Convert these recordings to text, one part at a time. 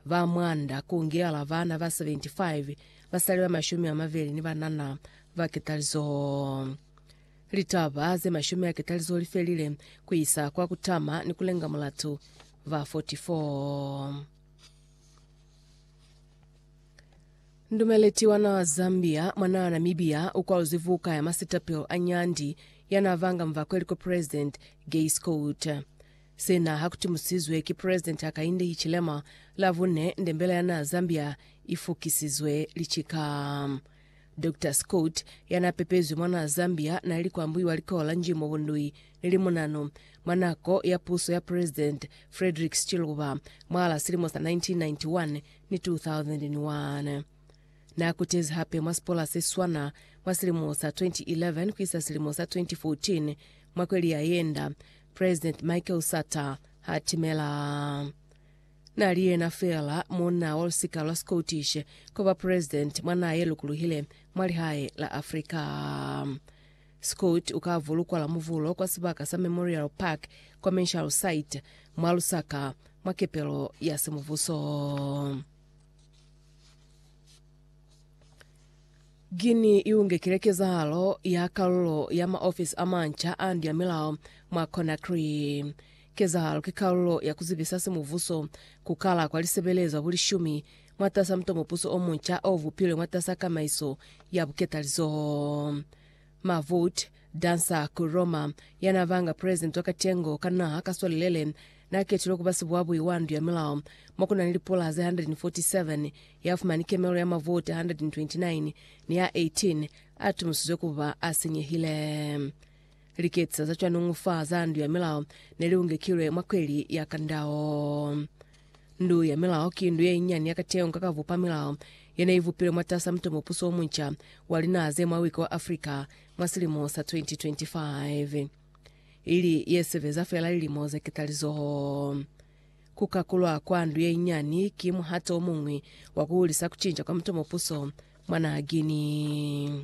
Ba mwanda ku ngiala bana ba 75, basali ba mashumi a mabeli ni banana ba ketalizo. Litaba ze mashumi a ketalizo li felile ku isa kwa ku tama ni ku lenga mulatu ba 44. Ndumeleti wa naa Zambia mwa naa Namibia u kwaluzwi vuka ya masitapelo a nyandi ya naa vanga mvakwe liko President Gay Scott. Sena ha ku timusizwe ki President Hakainde Hichilema Lavune nde mbela ya naa Zambia i fukisizwe licika. Doctor Scott, ya naa pepezwi mwa naa Zambia, na li kwa mbuiwa likoho la Njimo Bundui ni Limunanu mwa nako ya puso ya President Frederick Chiluba mwahal'a silimo sa 1991 ni 2001. Naa kutezi hape mwa sipola se swana mwa silimo sa 2011 ku isa silimo sa 2014. Mwa kweli ya yenda, President Michael Sata ha timela. Na li yena feela munna wa lusika lwa Scottish ku ba president mwa naha ye lukuluhile mwa lihae la Africa. Scott u ka vulukwa Lamuvulo kwa sibaka sa Memorial Park Commercial Site mwa Lusaka mwa kepelo ya semubuso. Guinea i ungekile kezahalo ya kalulo ya maofisi a manca a ndu ya milao mwa Conakry. Kezahalo ki kalulo ya ku zibisa simuvuso ku kala kwa lisebelezwa bulishumi mwatasa mutomopuso o munca o vupilwe mwatasa kamaiso ya buketalizoho. Mahfoud Dansa ku Roma, yana banga president wa katengo ka naha ka swalilele, na ketilwe kuba sibuabui wa ndu ya milao mo ku na ni lipula ze 147, ya fumani kemelo ya mavoti 129 ni a 18 a tumusizwe kuba a sinyehile. Liketisa za cwanuñu fa za ndu ya milao ne li ungekilwe mwa kweli ya kandao. Ndu ya Milao ki ndu ye inyani ya kateho nga ka bupa milao ye ne i bupilwe mwatasa muto mupuso o munca wa linaha ze mwa wiki wa Africa mwa silimo sa 2025, ili ye sebeza feela lilimo ze ketalizoho. Ku kakulwa kwa ndu ye inyani ki muhato o muñwi wa ku hulisa ku cinca kwa muto mupuso mwa naha Guinea.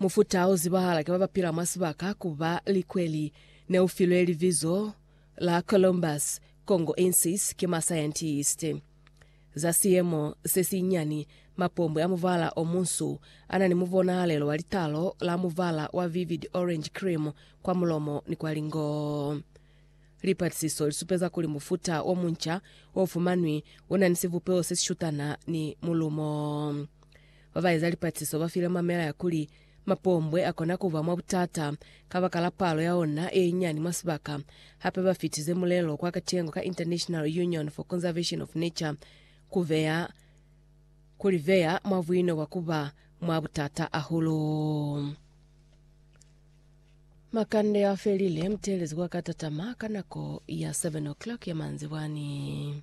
Mufuta o zibahala ki ba ba pila mwa sibaka ku ba likweli ne u filwe libizo la Columbus congoensis ki masayentisti. Za siemo se sinyani, mapombwe a mubala o munsu a na ni mubonahalelo wa litalo la mubala wa vivid orange cream kwa mulomo ni kwa lingoo. Lipatisiso lisupeza kuli mufuta o munca o fumanwi u na ni sivupeo se si shutana ni mulumo. Ba ba eza lipatisiso ba file mamela ya kuli mapombwe a kona ku ba mwa butata kabakala palo ya ona ye nyinyani mwa sibaka. Hape ba fitize mulelo kwa katengo ka International Union for Conservation of Nature ku beya ku li beya mwa buino bwa ku ba mwa butata hahulu. Makande a felile, mutelezi wa ka tatama ka nako ya 7 o'clock ya manzibwani.